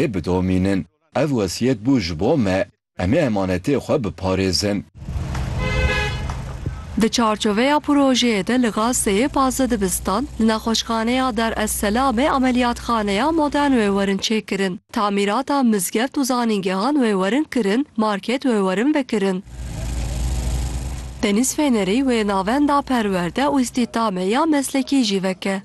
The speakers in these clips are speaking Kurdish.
ê bidomînin. Ev wesiyet bû ji bo me, em ê emanetê xwe biparêzin. Di çarçoveya projeyê de li Gazeyê pazdeh dibistan, li nexweşxaneya Dar es Selamê ameliyatxaneya modern wê werin çêkirin, tamîrata mizgeft û zanîngehan wê werin kirin, market wê werin vekirin. Denîz Fênerî wê navenda perwerde û îstîhdamê ya meslekî jî veke.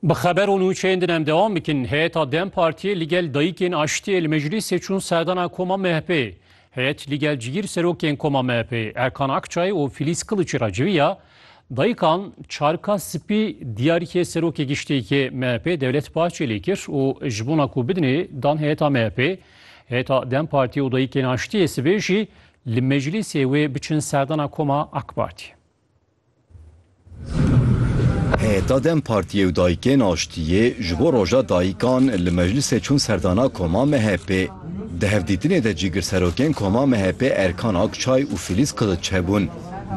Bi xeber û nûçeyên din em dewam bikin. Heyeta dem Partiyê li gel dayikên aştiyê li meclîsê çûn serdana koma MHP'ê. Heyet li gel cigîr serokên koma MHP'ê Erkan Akçay û Filîz Kiliçî re civiya. Dayikan çarka spî diyarîkê serokê giştiyê MHP'ê Dewlet Bahçelî kir û ji bona ku bidinê dan heyeta MHP'ê Heta dem Partî û Dayikên Aştiyê sibê jî li meclîsê wê biçin serdana koma AK Partî. Heta dem Partiyê û Dayikên Aştiyê ji bo roja dayikan li meclîsê çûn serdana koma MHP'ê. Di hevdîtinê de cîgirserokên koma MHP'ê Erkan Akçay û Filîz Kiliç hebûn.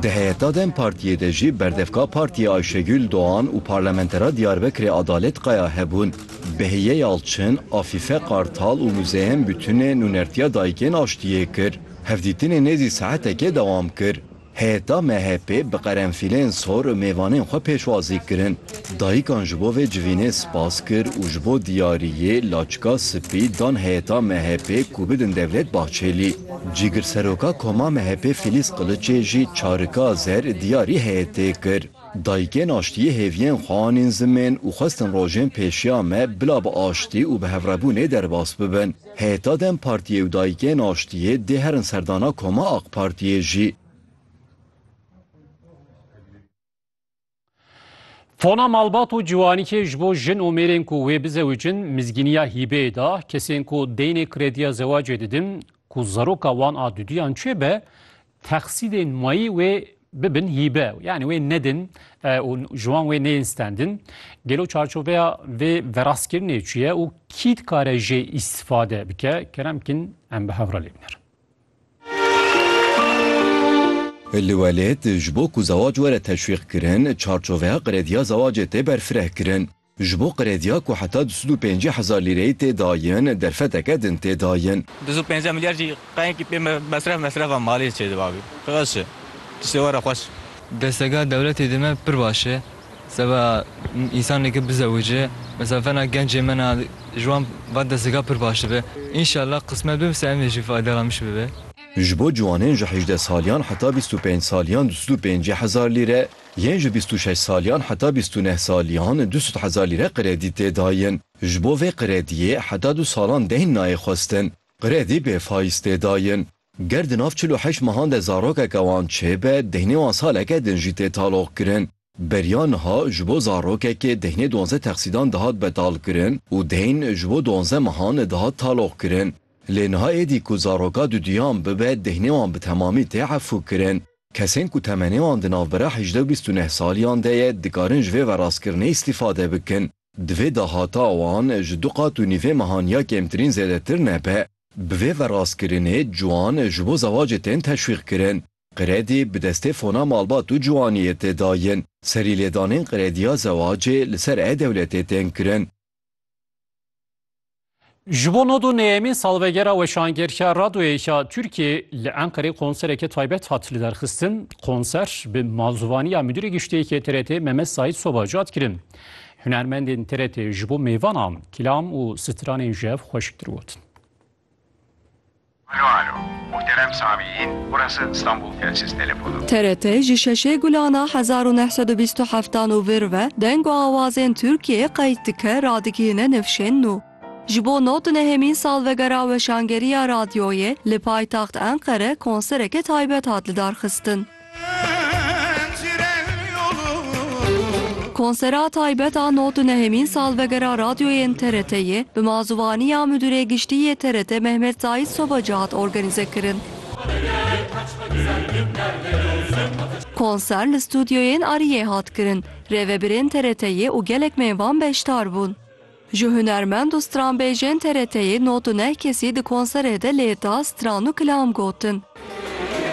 Di heyeta dem Partiyê de jî berdevka Partiyê Ayşegül Doğan û parlamentera Diyarbekirê Adalet Kaya hebûn. Behiye Yalçin, Afîfe Kartal û Muzeyem Bütünê nûnertiya Dayikên Aştiyê kir. Hevdîtinê nêzî saetekê dewam kir. Heyeta MHP'ê bi qerenfîlên sor û mêvanên xwe pêşwazî kirin. Dayikan ji bo vê civînê spas kir û ji bo diyariyê laçika spî dan heyeta MHP'ê ku bidin Devlet Bahçelî. Cîgirseroka Koma MHP'ê Fîlîz Qiliçê jî çarika zer diyarî heyetê kir. Dayikên aştiyê hêviyên xwe anîn zimên û xwestin rojên pêşiya me bila bi aştî û bihevrebûnê derbas bibin. Heta dem Partiyê û Dayikên Aştiyê dê herin serdana koma Ak Partiyê jî. Tona malbat û ciwanîkê ji bo jin û mêrên ku wê bizewicin mizgîniya hîbeyê da. Kesên ku deynê krediya zewacê didin, ku zeroka wan a duduyan çêbe, Texsîdên mayî wê bibin hîbe yanî wê nedin û ji wan wê neyên stendin. Gelo çarçoveya vê verastkirinê çi ye û kî dikare jê îstîfade bike? Kerem Kin em bi hev re lê biner. Li welêt, ji bo ku zewac were teşwîqkirin, çarçoveya qirêdiya zewacê tê berfirehkirin. Ji bo qrediya ku heta du sed û pêncî hezar lîreyê tê dayin, derfeteke din tê dayin. Du sed û pêncî milyar jî qeyekî pê mesref mesrefa malê çê dibabî. Xweş e. Tiştê were xweş e. Desteka dewletê dime pir baş e. Seba însaneke bizewice, mesela fena gencê me na ji wan va desteka pir baş dibe. Înşallah qismet bibe se em ê jî faydala min ji bibe. Ji bo ciwanên ji hejdeh saliyan heta bîst û pênc saliyan du sed û pêncî hezar lîre, Yên ji bîst û şeş saliyan heta bîst û neh saliyan du sed hezar lîre qredî tê dayin. Ji bo vê qrediyê heta du salan deyn nayê xwestin. Qredî bê fayîz tê dayin. Ger di nav çil û heşt mehan de zarokeke wan çêbe, deynê wan saleke din jî tê taloqkirin. Beriya niha ji bo zarokekê deynê duanzdeh texsîdan dihat betalkirin û deyn ji bo duanzdeh mehan dihat taloqkirin. Lê niha êdî ku zaroka duduyan bibe deynê wan bi temamî tê efûkirin. Kesên ku temenê wan di navbera hejde û bîst û neh saliyan de ye dikarin ji vê verastkirinê îstîfade bikin. Divê dahata wan ji du qat û nîvê mehan ya kêmtirîn zêdetir nebe. Bi vê verastkirinê ciwan ji bo zewacê tên teşwîqkirin. Qredî bi destê fona malbat û ciwaniyê tê dayin. Serîlêdanên qrediya zewacê li ser e-dewletê tên kirin. Ji bo nodu neyemîn salvegera weşangeriya radyoyêya Tirkiyê li Enqerê konsereke taybet hat li derxistin. Konser bi malzuvaniya Müdürê Giştiyekê TRT Mehmet Said Soba cat kirin. Hunermendên TRT ji bo mêvanan kilam û stranên jev xweşiktir gotin. Alo alo. Muhterem Samiyîn, burası İstanbul Telsiz Telefonu. TRT ji şeşê gulana hezar û neh sed û bîst û heftan û vir ve deng û awazên Tirkiyeyê qeyd dike, radigihîne nifşên nû. Ji bo nod di nehemîn salvegera weşangeriya radyoyê li paytaxt Enqere konsereke taybet hat lidarxistin. Konsera taybet a nod û nehemîn salvegera radyoyên TRT'yê bi mazûvaniya Midûrê Giştî yê TRT Mehmet Saîd Sobaci hat organîze kirin. Konser li studyoyên Ariyê hat kirin, rêvebirên TRT'yê û gelek mêvan beşdar bûn. Ji hunermend û stranbêjên TRT'yê nod û neh kesî di konserê de lêda, stran û kilam gotin.